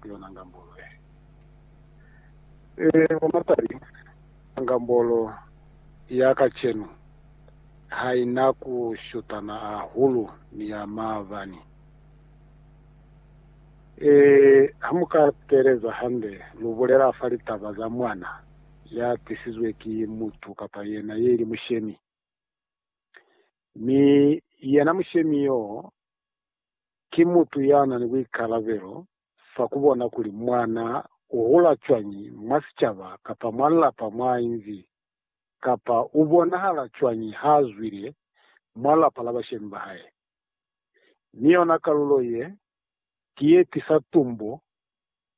ku yona ngambolo ye. Ee, kwa mapali, ngambolo ya kacenu ha i na ku shutana hahulu ni ya maabani. Ee, ha mu ka teeleza hande, lu bulela fa litaba za mwana ya tisizwe ki mutu kapa yena ye li mushemi. Mi yena mushemi yo ki mutu yana ni buikalabelo fa kubona kuli mwana uhula cwañi mwa sicaba kapa mwa lapa mwainzi, kapa ubonahala cwañi haazwile mwa lapa la bashemi bahae. Mi yona kalulo ye, ki yetisa tumbo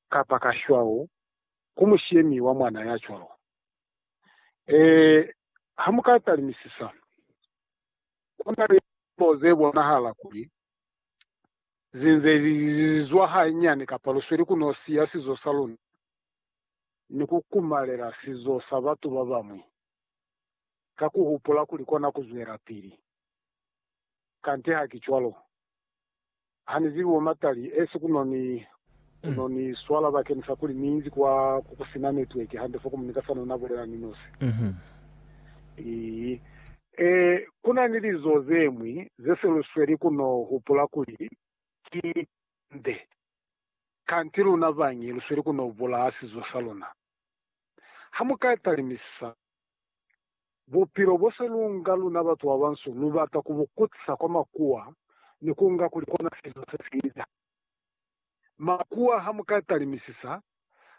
kapa kashwau ku mushemi wa mwana ya cwalo. Ee, hamuka talimisisa. Ku na ni lilimo ze bonahala kuli zi nze li zwa hanyani kapa lu sweli ku n'o siya sizo sa luna ni ku kumalela sizo sa batu ba bañwi ka ku hupula kuli kona ku zwelapili. Kante ha ki cwalo. Hanizibi bomatali esi kuno ni kuno ni swala bakeni sa kuli minzi kwa ku kusina network hande fo komu nika sano na bulela ni nosi. Ii. E, kuna ni lizo zemwi ze se lu sweli kuno hupula kuli ki nde. Kanti luna bañi lu sweli kuno bulaha sizo sa luna. Ha mu ka talimisisa Bupilo bo se lu nga luna batu ba bansu lu bata ku bu kutisa kwa makuwa ni ku nga kuli kona sizo se si inda. Makuwa ha mu ka talimisisa,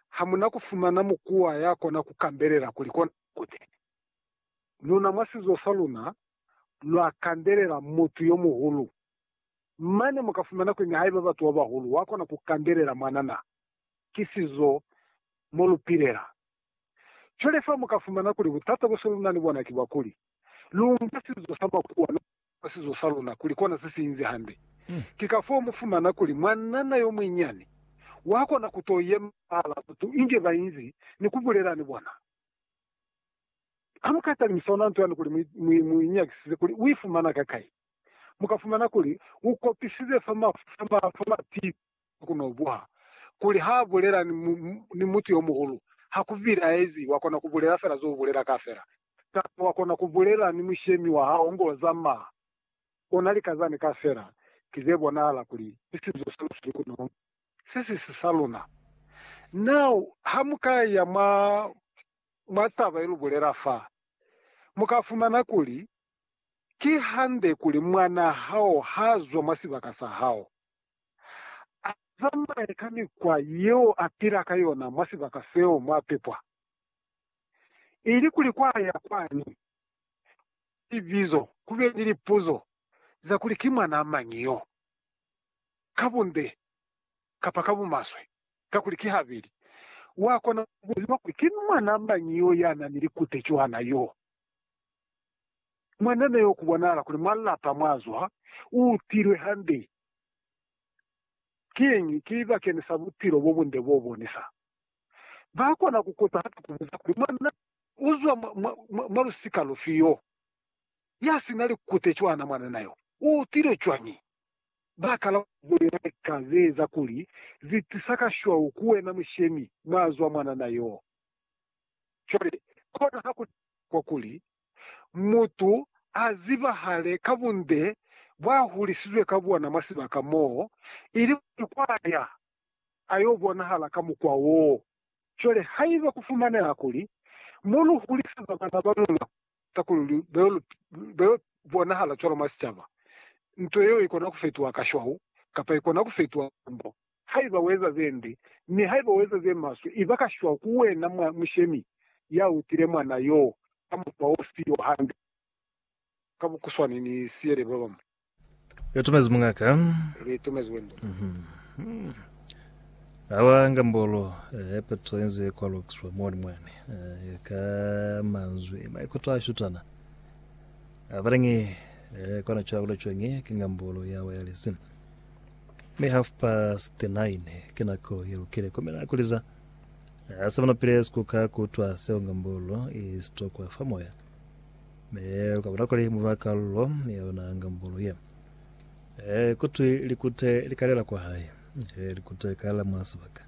ha mu na ku fumana mukuwa ya kona ku kandelela kuli kona kute. Luna mwa sizo sa luna lwa kandelela mutu yo muhulu. Mane mu ka fumana kuli nihaiba batu ba bahulu wa kona ku kandelela mwanana, ki sizo mo lu pilela. Cwale fa mu ka fumana kuli butata bo se lu na ni bona ki bwa kuli, lu nka sizo sa makuwa lu kenye mwa sizo sa luna kuli kona se si inzi hande. Ki kafoo mu fumana kuli mwanana yo munyinyani wa kona ku to yema fahal'a batu inge ba inzi ni ku bulela ni bona. Ha mu ka talimisa ona nto yani kuli mu i nyakisize kuli u i fumana kakai, mu ka fumana kuli u kopisize fa mafu, fa mapipi, ha ku n'o buha kuli ha bulela ni, mu, mu, ni mutu yo muhulu, ha ku bilaezi, wa kona ku bulela fela zo u bulela kaafela. Kamba wa kona ku bulela ni mushemi wa hao ngo zamaa, u na lika zani kaafela, ki ze bonahala kuli ki sizo sa lusuku ku n'o. Se si si sa luna. Now, ha mu ka ya mwa, mwa taba ye lu bulela fa, mu ka fumana kuli, Ki hande kuli mwanaa hao ha zwa mwa sibaka sa hao. A zamaye ka mikwa yeo a pila ka yona mwa sibaka seo mw'a pepwa. Ilikuli kw'a ya kwani, ku be ni libizo, ku be ni lipuzo za kuli ki mwanaa mañi yo, ka bunde kapa ka bumaswe, kakuli ki habeli. Wa kona ku buziwa kuli ki mwanaa mañi yo ya na ni likute cwana yo. Mwanana yo ku bonahala kuli mwa lapa mw'a zwa u utilwe hande. Kiñi? Ki libakenisa bupilo bobunde bobonisa. Bakona kukota hape kubuza kuli, Mwa na? Uzwa mwa, mwa, mwa lusika lufi yo yasina likute cwana mwanana yo? Uutile cwañi? Bakala. Bulela lika zeeza kuli zitisa kashwau ku wena mushemi mwazwa mwanana yo. Cwale, kona hakuna kwa kuli mutu a zibahale ka bunde bwa hulisizwe ka bona mwa sibaka moo, ili kuli kwa ya a yo bonahala ka mukwa woo. Cwale haiba ku fumaneha kuli mu lu huliseza bana ba luna ka kuli ba yo bonahala cwalo mwa sicaba, nto yeo i kona ku fetuha kashwau kapa i kona ku fetuha kambo. Haiba ueza zembi, mi haiba ueza zemaswe, iba kashwa ku wena mwa mushemi ya utile mwana yoo ka mukwa ofi o hande. Ka bukuswani ni siyele babañwi. Lu itumezi muñaka. Lu itumezi wendele. Ha lwa ngambolo ye peto ye nze kwa lukiswa moli mwani, ka manzwi maikuto a shutana. Abaleñi, kona cwabula cwañi ki ngambolo ya wireless. Mi half past nine ki nako ye lukile kumina kuliza a sa manapile sikuka kutwa seo nga mbolo i stokwa fa moya me ukabona kuli muba kalulo ya yona nga mbolo ye e kutwi likute likalela kwa hae e likute likalela mwa sibaka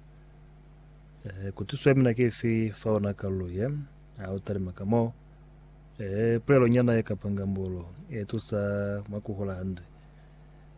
e kutiswe mina kifi fa ona kalulo ye a utalima ka moo e pulelo nyana ye kapanga mbolo e tusa mwa kuhola hande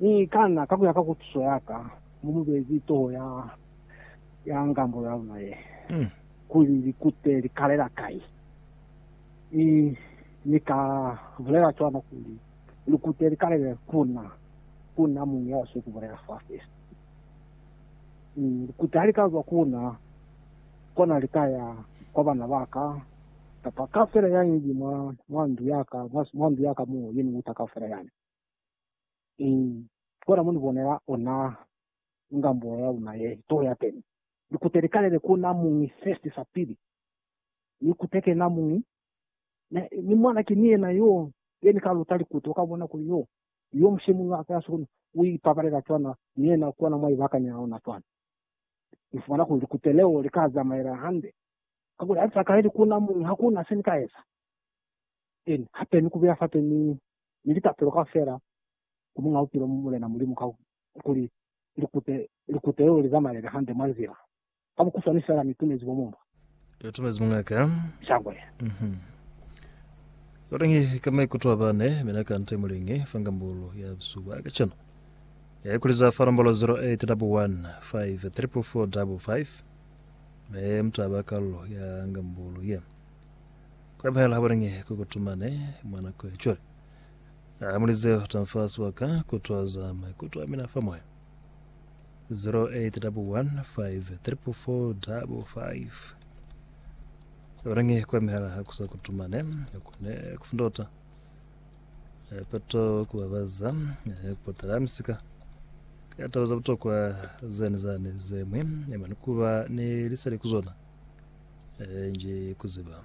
Mi kana kakuya ka kutuso yaka, mu mu bezi toho ya ya ngambulo ya luna ye, kuli likute li kalela kai. Mi Ni ka bulela cwana kuli likute li kalele ku na, ku na muñi ya siko bulela fa fesi. Mi likute hali ka zwa ku na, kona li ka ya kwa bana baka, kapa kaufela yani li mwa, mwa ndu yaka, mwa, mwa ndu yaka mo, yeni uta kaufela yani. I kona muni bonela ona ngambula ya luna ye to ya teni. Ni kute li kalele ku na muñi first sa pili. Ni kute ke na muñi. Ne, ni mwana ki ni yena yo, ye ni ka luta likute. U ka bona kuli yo, yo mushemuli wa ka ya sukulu u i pabalela cwana, ni yena kona mwa i bakanyela ona cwana. Ni fumana kuli likute leo li ka zamaela hande. Kakuli ha li sa kaleli ku na muñi, ha ku na se ni ka eza. Eli, hape ni kubuya fape ni, ni litapelo kaufela ku Muñ'a Bupilo, Mulena Mulimu, ka kuli likute, likute leo li zamaele hande mwa nzila. Ka bukuswani fela, Ni tumezi bo mumba. Ni tumezi muñaka. Shangwe. Mhm. Lwalingi ka maikuto a bane, mina ka nte mulingi, fa ngambulu ya busuba kacenu. Ya ikuliza fa nombolo 0815 34455, me mutaba kalulo ya ngambulu ye. Kwepahala habulingi ku kutumane mwa nako ya cwale. A muli zeo ta nfa sibaka ku twaza maikuto a mina fa moya. 08153445 Habulingi kwa mihala ha ku sa kutumane, ha ku ne ku fundota. Peto ku babaza kupotela misika ka taba za butokwa zani zani zemwi mani kuba ni liseli ku zona nji kuziba.